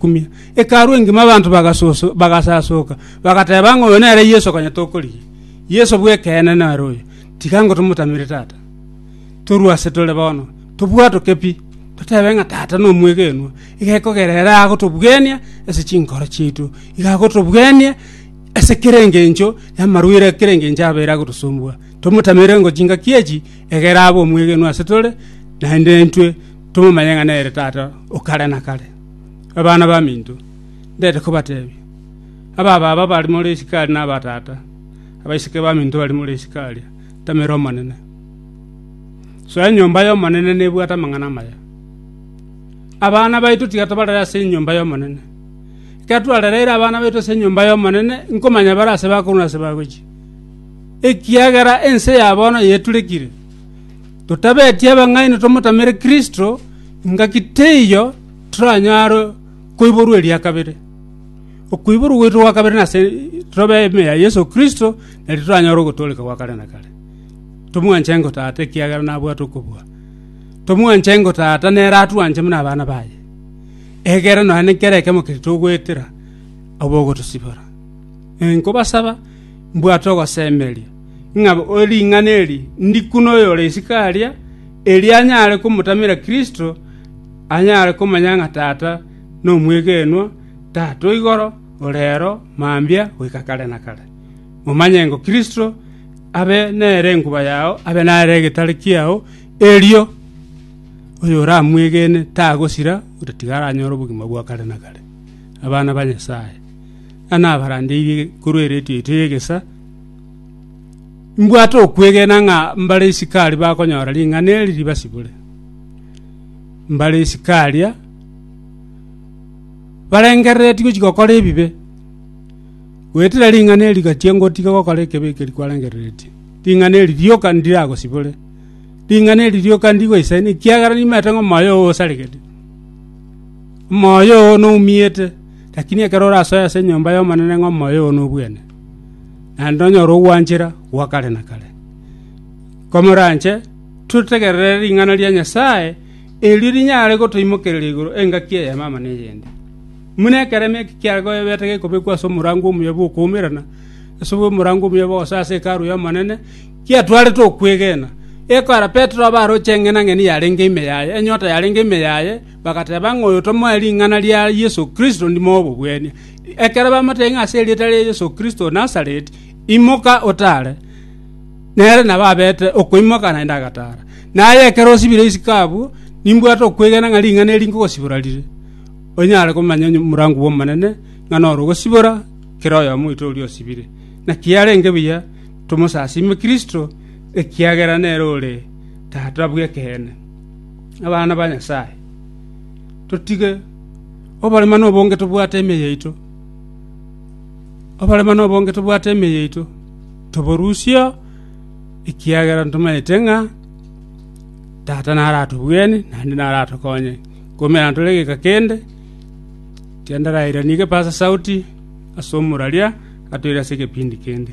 kumia. Hekalu engima abanto bagasoso, bagasasoka, bagateba ng'a oyo nere Yeso konya tokorigia. Yeso bw'ekeene nere oyo, tiga ngotomotamire Tata. Torue ase tore bono, tobwatoke pi, totebe ng'a Tata nomwegenwa, iga ekogera ere agotobugenia ase chinkoro chiaito, iga agotobugenia ase kera engencho y'amarwaire a kera engencho abeire agotosumbua. Tomotamere ngo chingaki echi egere abe omwegenwa ase tore, naende intwe tomomanye ng'a nere Tata o kare na kare. Abana baminto, ndete kobateebia, ababaaba bari more isiko aria nabatata, abaiseke baminto bari more isiko aria, ntamera Omonene. Soa enyomba y'Omonene nebwate amang'ana amaya. Abana baito tiga tobarere ase enyomba y'Omonene. Ekero twarereire abana baito ase enyomba y'Omonene, nkomanya bare aase bakorwa na aase bagochia, ekiagera ense ya bono yaeturekire. Totabetie abang'aini tomotamere Kristo, ingaki teiyo toranyare koiborwa eria kabere. Okoiborwa gwaito gwa kabere nase tobe ime ya Yeso Kristo, nario toranyore ogotooreka gwa kare na kare. Tomwanche engo Tata, ekiagera nabwate okobua. Tomwanche engo Tata, nere atwanche buna abana baye, egere nonya nekero ekemo keria togoetera, abe ogotosibora. Inkobasaba, mbwate ogosemeria, ng'a ring'ana eri ndiku noyore isiko aria, erio anyare komotamera Kristo, anyare komanya ng'a Tata nomwegenwa, Tata o igoro, o reero, mambia goika kare na kare. Momanye ng'a Kristo abe nere enkuba yao, abe nere egetare kiao, erio oyoramwegene tagosira, otatiga aranyore obogima bwa kare na kare. Abana ba Nyasae, ng'a nabarandeirie korwa eretio yaito y'egesaa, Imbwate okwegena ng'a mbare isiko aria bakonyora ring'ana eri ribasibore. Mbare isiko aria barengereretie gochia gokora ebibe, goetera ring'ana eri rigachia ngotiga gokora ekebe ekeri kwarengereretie, ring'ana eri rioka ndiragosibore, ring'ana eri rioka ndigoisaini ekiagera nimaete ng'a omoyo oo osaregete, omoyo oo noumiete, rakini ekero orasoe ase enyomba y'Omonene ng'a omoyo oo nobwene. naende onyore ogwanchera gwa kare na kare. Komoranche totegerere ring'ana ria Nyasae, erio rinyare gotoimokereria igoro engaki eyemama neyende. Buna ekeremo eke kiagoebete gekobekwa ase omorango omuya bw'okoumerana, ase omorango omuya bw'ogosa ase Hekalu y'Omonene, kiatwarete okwegena. Ekora Petero abaroche eng'enang'eni yarenge ime yaye, enyota yarenge ime yaye, bagateba ng'a oyo tomoe ring'ana ria Yeso Kristo ndimo obobwania. Ekero bamoteebia ng'a ase erieta ria Yeso Kristo o Nazareti, imoka otaare, nere nabo abeete okoimoka naende agataara. Naye ekero osibire isiko abwo, nimbwate okwegena ng'a ring'ana eri nkogosibora rire, onyare komanya omorango bw'Omonene, ng'a noro ogosibora kera oyomo oito oria osibire. Naki arenge buya tomosasiime Kristo, ekiagera nere ore Tata bw'ekeene. Abana ba Nyasae, totige Oborema nobonge tobwate ime yaito, oborema nobonge tobwate ime yaito, toborusia, ekiagera ntomaete ng'a Tata naro atobwene naende naro atokonye. Komera ntore egeka kende, ekiagera ndarairani egepaza sauti ase omoraria atoire ase egepindi kende.